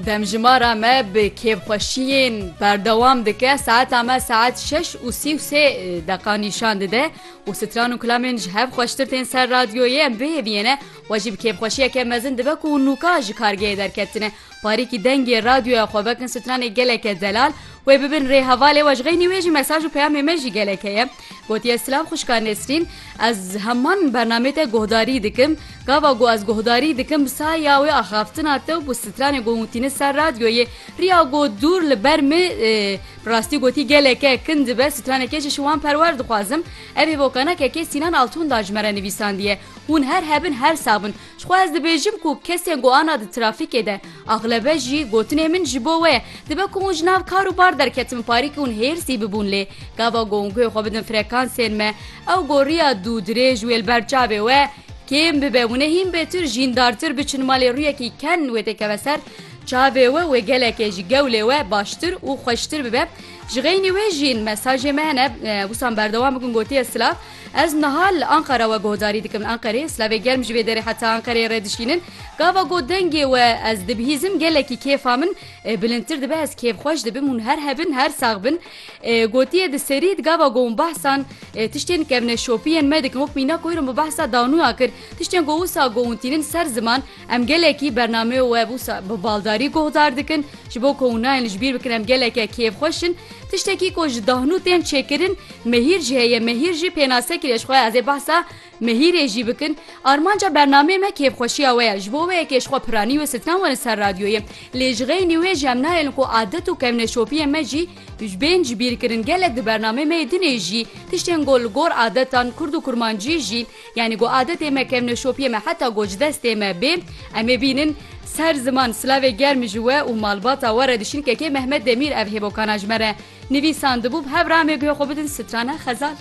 Demjimara me bi kêfxweşiyên berdewam dike, saeta me saet şeş û sî û sê deqa nîşan dide û stran û kilamên ji hev xweştir tên ser radyoyê em bihêviyene we jî bi kêfxweşiyeke mezin dibe ku nûka ji kargehê derketine parîkî dengê radyoya xwe vekin stranê geleke delal wê bibin rê hevalê we ji xeynî wê jî mesaj û peyamê me jî gelek heye. Gotiye silav xwişka Nesrîn, ez heman bernameyê te guhdarî dikim, gava ku ez guhdarî dikim bi saya wê axaftina te û bi stranê ku hûn tînin ser radyoyê, riya ku dûr li ber min bi rastî gotî geleke kin dibe, straneke ji şiwan perwer dixwazim. Ev hêvokanakeke Sînan Altûn da ji me re nivîsandiye. Hûn her hebin her sax bin. Jixwe ez dibêjim ku kesên ku ana di trafîkê de axlebe jî gotinê min ji bo we ye. Dibe ku hûn ji nav kar û bar derketin parîk hûn hêrsî bibûn lê gava ku hûn guhê xwe bidin frekansên me ew ku riya dû dirêj wê li ber çavê we kêm bibe hûnê hîn bêtir jîndartir biçin malê rûyekî ken wê tê keve ser çavê we wê gelekê ji gewlê we baştir û xweştir bibe. Ji xeynî wê jîn mesajê me hene wisan berdewam bikin gotiye silav. Ez niha li Anqara we guhdarî dikim. Li Anqerê slavê germ ji vê derê heta Anqereyê re dişînin. Gava got dengê we ez dibihîzim gelekî kêfa min bilindtir dibe ez kêfxweş dibim hûn her hebin her sax bin. Gotiye di serî di gava got hûn behsan tiştên kevneşopiyên me dikin wek mîna ku îro min behsa danuya kir tiştên ku wisa got hûn tînin ser ziman Em gelekî bernameyê we wisa bi baldarî guhdar dikin, ji bo ku hûn nayên ji bîr bikin em geleke kêfxweş in. Tiştekî ku ji dahnû tên çêkirin mehîr jî heye, mehîr jî pênasekir e. Ji xwe ez ê behsa mehîrê jî bikin. Armanca bernameyê me kêfxweşiya we ye. Ji bo wê yekê ji xwe piranî wê stran werin ser radyoyê. Lê ji xeynî wê jî em nayêlin ku adet û kevneşopiyên me jî bên ji bîr kirin. Gelek di bernameyê me yê dinê jî tiştên ku li gor adetan kurd û kurmancî jî Yanî ku adetê me kevneşopiyê me heta ku ji destê me bê em ê bînin. Ser ziman silavê germ ji we û malbata we re diçin kekê Mehmet Demîr ev hêbokana ji me re nivîsandibû bi hev re em ê guhê xwe bidin strana xezal.